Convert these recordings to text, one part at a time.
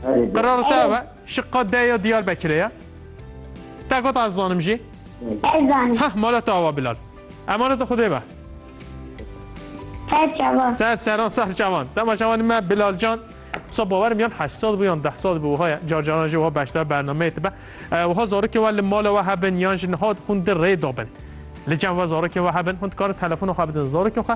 Qiralite we şiqa de ya Diyarbekirê ye. Te got ez zanim jî. Ez zanim. Heh mala te ava Bilal. Emaneta Xwedê be. Ser çavan. Ser çavan, ser çavan. Dema çavanî me Bilal Can Sa bawerim yan heşt sal bû yan deh sal bû wiha ye car caran jî wiha beşdar bernameyê dibe wiha zarokê we li mala we hebin yan ji niha hûn di rê dabin li cem we zarokê we hebin hûn dikarin telefona xwe bidin zarokên xwe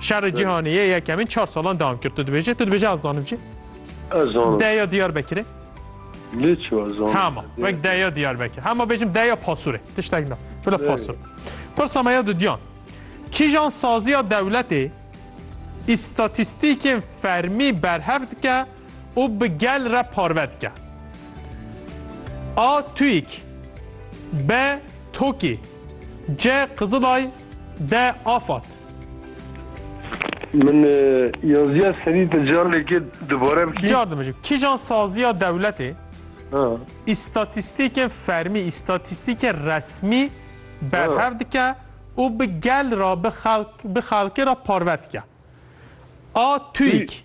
Şerê cîhanê yê yekemîn çar salan devam kir. Tu dibêje, tu dibêje ez zanim jî. Ez zanim. Deya Diyarbekirê. Lê çi ez zanim. Tamam. Wek deya Diyarbekir. Hema bêjim deya Pasurê. Tiştek na. Bila Pasur. Pirsa me ya dudiyan. Kîjan saziya dewletê îstatîstîkên fermî berhev dike û bi gel re parve dike. A. TÜİK B. TOKİ C. Kızılay De afat. Min yaziya serî te car lêkê dubare bikî. Car dimijî. Kîjan saziya dewletê îstatîstîkên fermî, îstatîstîkên resmî berhev dike û bi gel re, bi xelkê re parve dike. A TÜİK.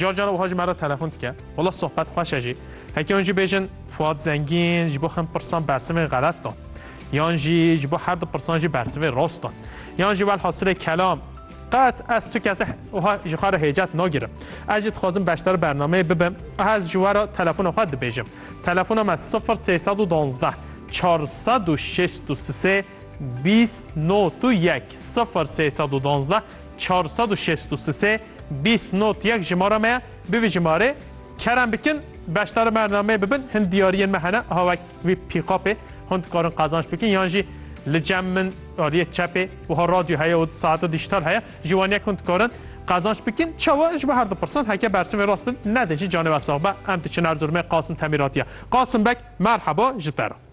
Car car wiha ji me re telefon dike. Wala sohbet xweş e jî. Heke hûn jî bêjin Fuat Zengîn ji bo hin pirsan bersivên xelet da. Yan jî ji bo her du pirsan jî bersivê rast da. Yan jî welhasilê kelam Qet ez tu kesê wiha ji xwe re hêcet nagirim. Ez jî dixwazim beşdar bernameyê bibim. Aha ez ji we re telefona xwe dibêjim. Telefona me sifir sê sed û duwazdeh çar sed û şêst û sisê bîst not û yek sifir sê sed û duwazdeh Çar sed û şêst û sisê bîst not yek jimara me ye. Bi vî jimarê kerem bikin, beşdari bernameyê bibin. Hin diyariyên me hene ha wek vî pîkapê. Hûn dikarin qazanc bikin yan jî li cem min aliyê çepê wiha radyo heye û saeta dîjîtal heye. Ji wan yek hûn dikarin qazanc bikin. Çawa? Ji bo her du pirsan heke bersivê rast bin, nedê jî canê we sax be. Em diçin Erzurumê Qasim Temîratiya. Qasim Beg merheba ji te re.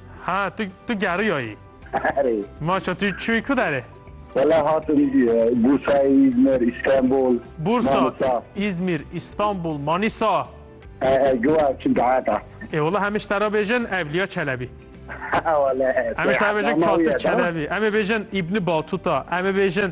Ha tu tu geriyayî. Erê. Maşa tu çûyî ku derê? Valla hatim Bursayê, İzmir, İstanbul, Bursa, Manisa. İzmir, İstanbul, Manisa. He he giwa çi dahata. Ê wala hemê ji te re bêjin Evliya Çelebi. Wala. Hemê ji te re bêjin Katib Çelebi. Emê bêjin İbni Batuta. Emê bêjin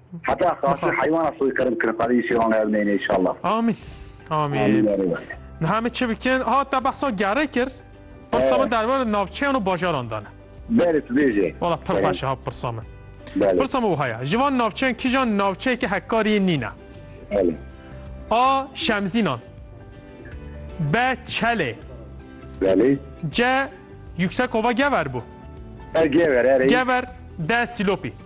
Heta xasî heywana soykırım kirin qadê îşê wan ev neyne inşallah. Amin. Amin. Niha me çi bikin? Ha te behsa gerê kir. Pirsa min derbarê navçeyan û bajaran de ne. Berê tu bêjê. Wala pir xweş ha pirsa min. Pirsa min wiha ye. Ji van navçeyan kîjan navçeyeke hekkariyê nîne? A. Şemzînan B. Çelê C. Yüksekova Gever bû. Gever, Gever D. Silopî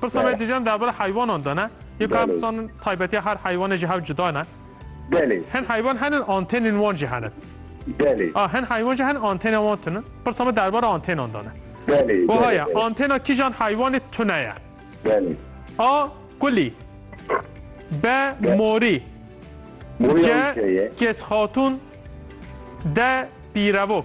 Pirsa me dîdiyan derbara heywanan de ne? Yê ka em Belê. dizanin taybetiya her heywanê jî hev cuda ne? Belê, Hin heywan henin antênên wan jî henin. belê, A hin heywan jî henin antênên wan tune. Pirsa me derbara antênan de ne? belê, Wiha belê, ye, belê, antêna kîjan heywanê tune ye? belê. A kulî. B morî. Morî C ew şey ye. kes xatûn. D pîrevok.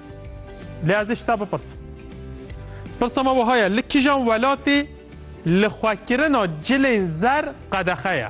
Lê ez ê ji te bipirsim. Pirsa me wiha ye, li kijan welatê lixwekirina cilên zer qedexe ye?